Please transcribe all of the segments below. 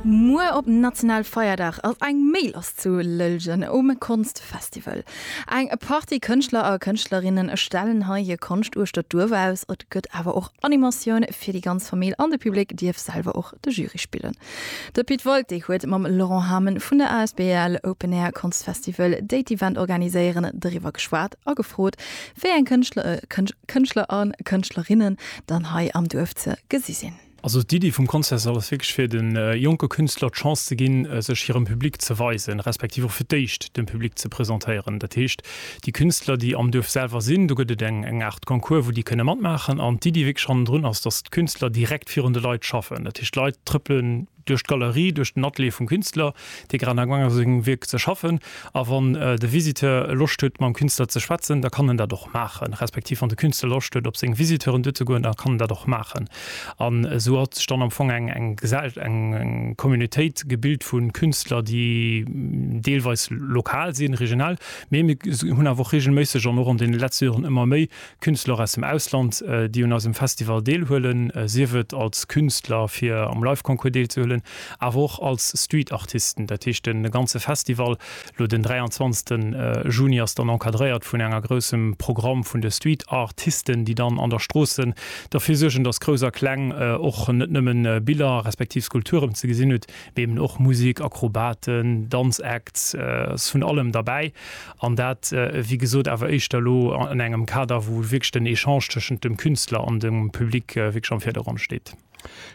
Muer op National Feierdag ass eng méi lass zu Lëllgen um Konstfestival. Eng Partie Kënschtler a Kënschtlerinne stellen hei hir Konscht uechter d'Duerf aus. Et gëtt awer och Animatioun fir déi ganz Famill an de Public dierf selwer och de Jury spillen. De Pit Wolté huet mam Laurent Hamen vun der asbl Open Air Konstfestival, déi d'Event organiséieren, driwwer geschwat a gefrot, wéi eng Kënschtler a Kënschtlerinnen dann hei am Duerf ze gesi sinn. Also d'Iddi vum Concert ass wierklech fir de jonke Künstler d'Chance ze ginn, sech hirem Public ze weisen, respektiv och fir d'éischt dem Public ze presentéieren. Dat heescht, déi Künstler, déi am Duerf selwer sinn, do gëtt et eng eng Aart Concours, wou déi kënne matmaachen. An d'Iddi wierklech hannendrun ass, dass d'Künstler direkt virun de Leit schaffen. Dat heescht, d'Leit trëppelen duerch d'Galerie, duerch den Atelier vum Künstler, Dee Gran a Guang ass sengem Wierk ze schaffen, a wann de Visiteur Loscht huet mam Künstler ze schwätzen, da kann en dat och maachen, respektiv wann de Künstler Loscht huet op seng Visiteuren duer ze goen, da kann en dat och maachen. An esou hat sech dann am Fong eng Communautéit gebilt vu Künstler, déi deelweis lokal sinn, regional, mee mir hunn awer och reegelméisseg an och an deene letzte Joren ëmmer méi Künstler aus dem Ausland, déi un eisem Festival deelhuelen, sief et als Künstler fir am Live-Concours deelzehuelen, awer och als Street-Artisten. Dat heescht de ganze Festival, elo den 23 Juni, ass dann encadréiert vun enger groussem Programm vun de Street-Ar-tisten, déi dann an der Stroossen derfir suergen, dass Grouss a Kleng och net nëmmen Biller respektiv Skulpturen ze gesinn hutt, mee eben och Musik, Akrobaten, Danz-Acts, ass vun allem derbäi. An dat, wéi gesot, awer éischter elo an engem Kader, wou wierklech den Echange tëschent dem Künstler an dem Public wierklech am Virdergrond steet.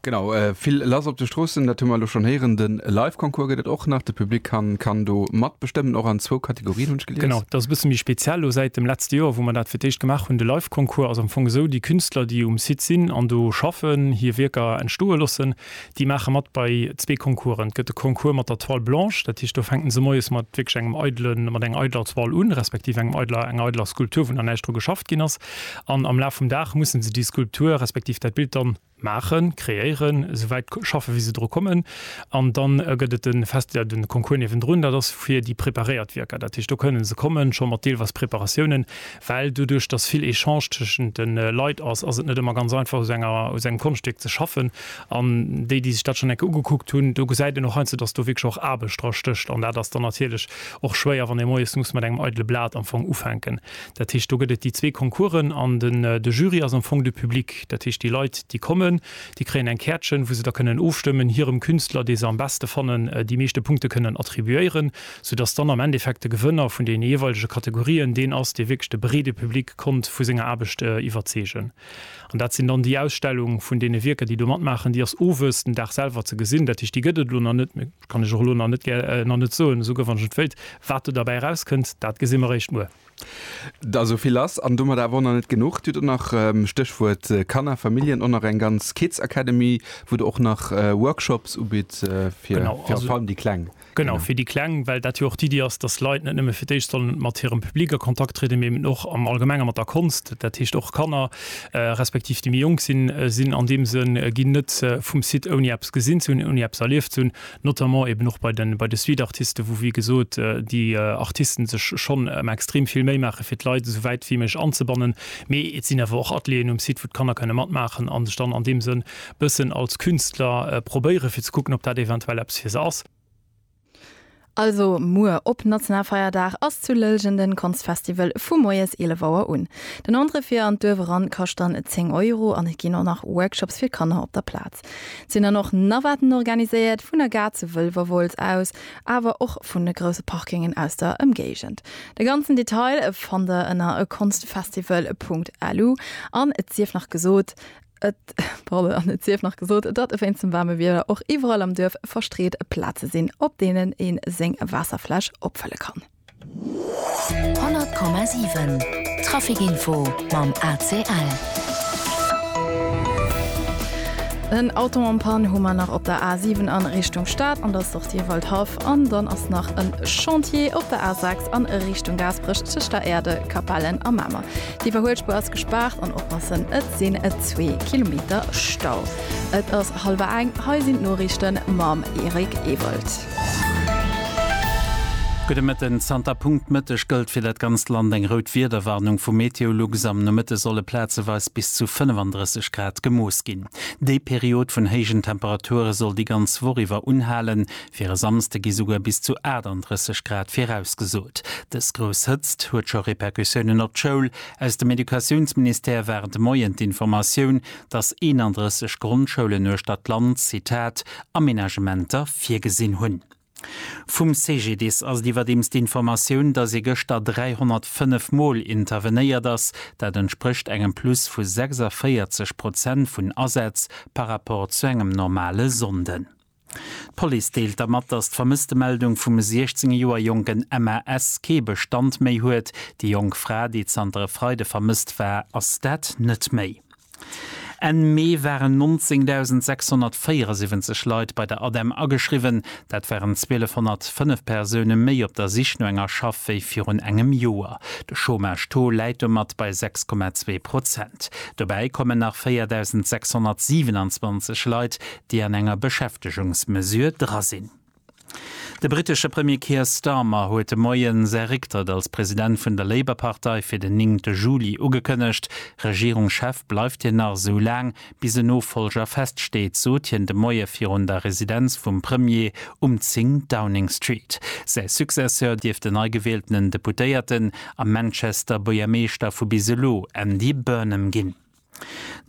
Genau, vill lass op de Stroossen, dat hu mer elo schonn héieren. De Live-Concours gëtt et och nach. De Public kann do matbestëmmen, och an zwou Kategorien, hunn ech gelies. Genau, dat ass e bësse méi speziell elo säit dem letzte Joer, wou mer dat fir d'éischt gemaach hunn. De Live-Concours ass am Fong esou, Déi Künstler, déi um Site sinn an do schaffen, hir Wierker entstoe loossen, Déi maache mat bei zwee Concoursen. Et gëtt de Concours mat der Toile blanche, dat heescht do fänken se moies mat wierklech engem eidele, mat enger eideler Toile un, respektiv engem eideler, enger eideler Skulptur, wou nach näischt dru geschafft ginn ass. An am Laf vum Dag mussen se déi Skulptur, respektiv dat Bild dann maachen, kreéieren, esou wäit schaffen, wéi se dru kommen. An dann gëtt et de Fest, de Concours niewendrun, dat ass fir déi preparéiert Wierker. Dat heescht do kënnen se kommen scho mat deelweis Preparatiounen, Well doduerch, dass vill Echange tëschent de Leit ass, ass et net ëmmer ganz einfach, u sou enger, u sou engem Konschtstéck ze schaffen. An déi, déi sech dat schonn eng Kéier ugekuckt hunn, do gesäit een och heiansdo, dass do wierklech och Aarbecht dra stécht. An dat ass dann natierlech och schwéier, wann ee moies muss mat engem eidele Blat am Fong ufänken. Dat heescht, do gëtt et déi zwee Concoursen an den, de Jury ass am Fong de Public. Dat heescht, déi Leit, déi kommen, déi kréien eng Käertchen, wou se da kënnen ofstëmmen, hirem Künstler, dee se am beschte fannen, déi meeschte Punkte kënnen attribuéieren. soudass dann am Endeffekt de Gewënner vun deene jeeweilege Kategorien deen ass, dee wierklech de breede Public konnt vu senger Aarbecht iwwerzeegen. An dat sinn dann déi Ausstellung vun deene Wierker, déi do matmaachen. Déi ass owes den Dag selwer ze gesinn. Dat heescht, déi gëtt et elo nach net, dat kann ech och elo nach net, nach net soen, esou guer wann ech et wéilt. Wat do derbäi erauskënnt, dat gesi mer eréischt muer. Da esou vill ass an domat awer och nach net genuch. Du hutt och nach, Stéchwuert Kanner, Familljen, och nach eng ganz Kids Academy, wou Der och nach Workshops ubitt fir virun allem déi Kleng. Genau, fir déi Kleng, well dat jo och d'Iddi ass, dass Leit net nëmme fir d'éischt sollen mat hirem Public a Kontakt trieden, mee eben och am Allgemenge mat der Konscht. Dat heescht och Kanner, respektiv déi méi jonk sinn, sinn an deem Sënn ginn net vum Site ouni eppes gesinn ze hunn, ouni eppes erlieft ze hunn, notamment eben och bei de Streetartisten, wou, wéi gesot, déi Artisten sech schonn ëmmer extrem vill Méi maachen, fir d'Leit esou wäit wéi méiglech anzebannen. Mee et sinn awer och Atelieren um Site, wou d'Kanner kënne matmaachen a sech dann an deem Sënn bëssen als Künstler probéieren, fir ze kucken, ob dat eventuell eppes fir se ass. Also muer op Nationalfeierdag ass zu Lëllgen den Konstfestival vu moies 11 Auer un. Den Entrée fir an d'Duerf eran kascht dann 10 Euro an et ginn och nach Workshops fir Kanner op der Plaz. Et sinn dann och Navaten organiséiert, vun der Gare zu Wëlwerwolz aus, awer och vun de grousse Parkingen aus der Ëmgéigend. De ganzen Detail fannt der ënner konstfestival.lu an et sief nach gesot, Et, pardon, an et sief nach gesot, datt wéinst dem waarme Wieder och iwwerall am Duerf verstreet Plaze sinn, op deenen ee seng Waasserfläsch opfëlle kann. 100,7 Traficinfo mam ACL. En Auto en panne hu mer nach op der A7 an Richtung Stad an der Sortie Waldhaff an dann ass nach en Chantier op der A6 an Richtung Gaasperech tëscht der Erde, Capellen a Mamer. D'Iwwerhuelspur ass gespaart an oppassen, et sinn et zwee Kilometer Stau. Et ass hallwer eng, hei sinn d'Noriichte mam Eric Ewald. Gudde Mëtten, Zanter Punkt Mëtteg gëllt fir dat ganzt Land eng rout Wiederwarnung vu Meteolux. Am Nomëtte solle plazeweis bis zu 35 Grad gemooss ginn. Déi Period vun héijen Temperature soll déi ganz Woch iwwer unhalen, Fir e Samsde gi souguer bis zu 38 Grad virausgesot. Dës grouss Hëtzt huet scho Repercussiounen op d'Schoul. Aus dem Educatiounsministère war de Moien d'Informatioun, datt 31 Grondschoulen uechter d'Land, Zitat, Amenagementer virgesinn hunn. Vum CGDIS ass et iwwerdeems d'Informatioun, datt ee gëschter 305 Mol intervenéiert ass. Dat entsprécht engem Plus vu 46 Prozent vun Asätz par Rapport zu engem normale Sonnden. D'Police deelt der mat, datt d'Vermësstemeldung vum 16 Joer jonken Emma S. kee Bestand méi huet. Déi jonk Fra, déi zanter e Freide vermësst war, ass dat net méi. Enn Mee waren 19.674 Leit bei der ADEM ageschriwwen. Dat waren 1.205 Persoune méi op der Sich no enger Schaff wéi virun engem Joer. De Chômage-Taux läit domat bei 6,2 Prozent. Dobäi kommen nach 4.627 Leit, déi an enger Beschäftegungsmesure dra sinn. De brittesche Premier Keir Starmer huet de Moie säi Récktrëtt als President vun der Labour-Partei fir den néngte Juli ugekënnegt. Regierungschef bleift hien nach esou laang, bis en Nofollger feststeet, sot hien de Moie virun der Residenz vum Premier um 10 Downing Street. Säi Successeur dierft den neigewieltenen Deputéierten a Manchester Buergermeeschter vu bis elo Andy Burnham ginn.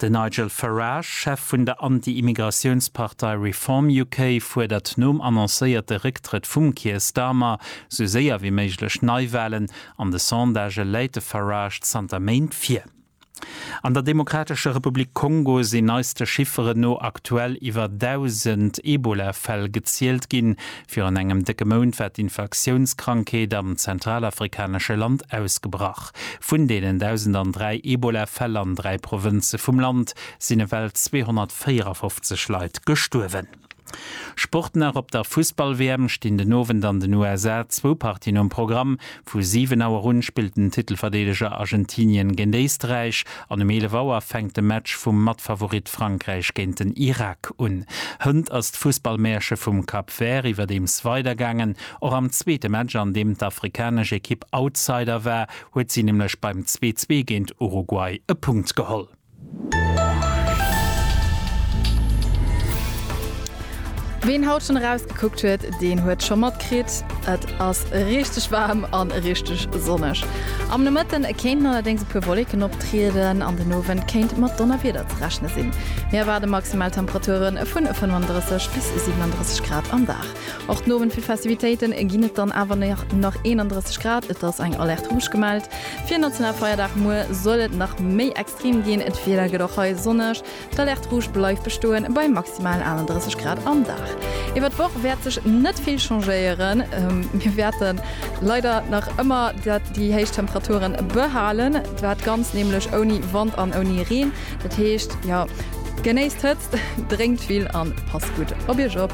Den Nigel Farage, Chef vun der Anti-Immigratiounspartei Reform UK, fuerdert nom annoncéierte Récktrëtt vum Keir Starmer sou séier wéi méiglech Neiwalen. An de Sondagë läit de Farage zanter Méint vir. An der Demokratescher Republik Kongo sinn neiste Chifferen no aktuell iwwer 1.000 Ebola-Fäll gezielt ginn. Virun engem décke Mount war d'Infektiounskrankheet am zentralafrikanesche Land ausgebrach. Vun deenen 1.003 Ebola-Fäll an dräi Provënze vum Land sinn ewell 254 Leit gestuerwen. Sport nach, Op der Fussball-WM stinn den Owend an den USA zwou Partien um Programm. Vu 7 Auer un spillt den Titelverdeedeger Argentinien géint Éisträich an um 11 Auer fänkt de Match vum Matfavorit Frankräich géint den Irak un. Hënt ass d'Fussball-Mäerche vum Cap Vert iwwerdeems weidergaangen. Och am zweete Match, an deem d'afrikanesch Ekipp Outsider war, huet si nämlech beim Zwee-Zwee géint Uruguay e Punkt geholl. Ween haut schon erausgekuckt huet, deen huet scho matkritt, et ass richteg waarm an richteg sonneg. Am Nomëtten kéinten allerdéngs e puer Wolleken optrieden an den Owend kéint mat Donnerwieder ze rechne sinn. Mir erwaarde maximal Temperature vun 35 bis 37 Grad am Dag. Och den Owend fir Festivitéiten ginn et dann awer nach 31 Grad. Et ass eng Alerte rouge gemellt. Fir Nationalfeierdag muer soll et nach méi extrem ginn. D'Wieder gëtt och hei sonneg. D'Alerte rouge bleift bestoen bei maximal 31 Grad am Dag. Iwwert d'Woch wäert sech net vill changéieren. Mir wäerte leider nach ëmmer déi héich Temperature behalen. Dat Ganzt nämlech ouni Wand an ouni Reen. Dat heescht, jo, genéisst d'Hëtzt, drénkt vill an passt gutt op Iech op.